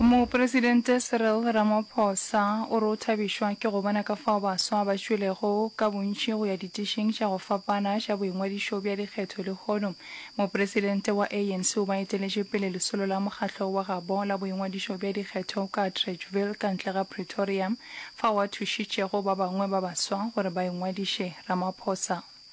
Mopresidente Cyril Ramaphosa o re o thabišwa ke go bona ka fao baswa ba tšwelego ka bontši go ya ditišing tša go fapana tša boingwadišo bja dikgetho lehono Mopresidente wa ANC o ba eteletše pele lesolo la mokgatlo wa gabo la boingwadišo bja dikgetho ka Atteridgeville ka ntle ga Pretoria fao a thušitšego ba bangwe ba baswa gore ba ingwadiše Ramaphosa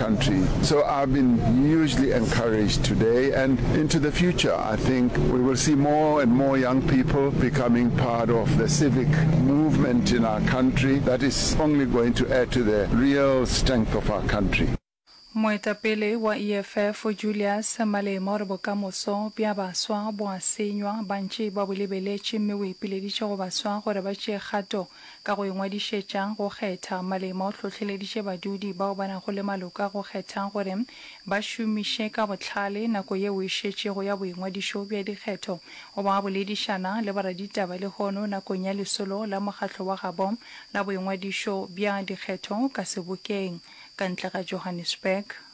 country so I've been hugely encouraged today and into the future I think we will see more and more young people becoming part of the civic movement in our country that is only going to add to the real strength of our country. Moetapele wa EFF Julius Malema o re bokamoso bja baswa bo a senywa, bantši ba bo lebeletše mme o ipileditše go baswa gore ba tšee kgato Ka go ingwadišetša go kgetha, Malema o hlohleleditše badudi bao ba nago le maloko a go kgethang gore ba šomiše ka bohlale nako yeo e šetšego ya boingwadišo bja dikgetho go ba boledišana le boraditaba lehono nakong ya lesolo la mokgatlo wa gabo la boingwadišo bja dikgetho ka sebokeng ka ntle ga Johannesburg.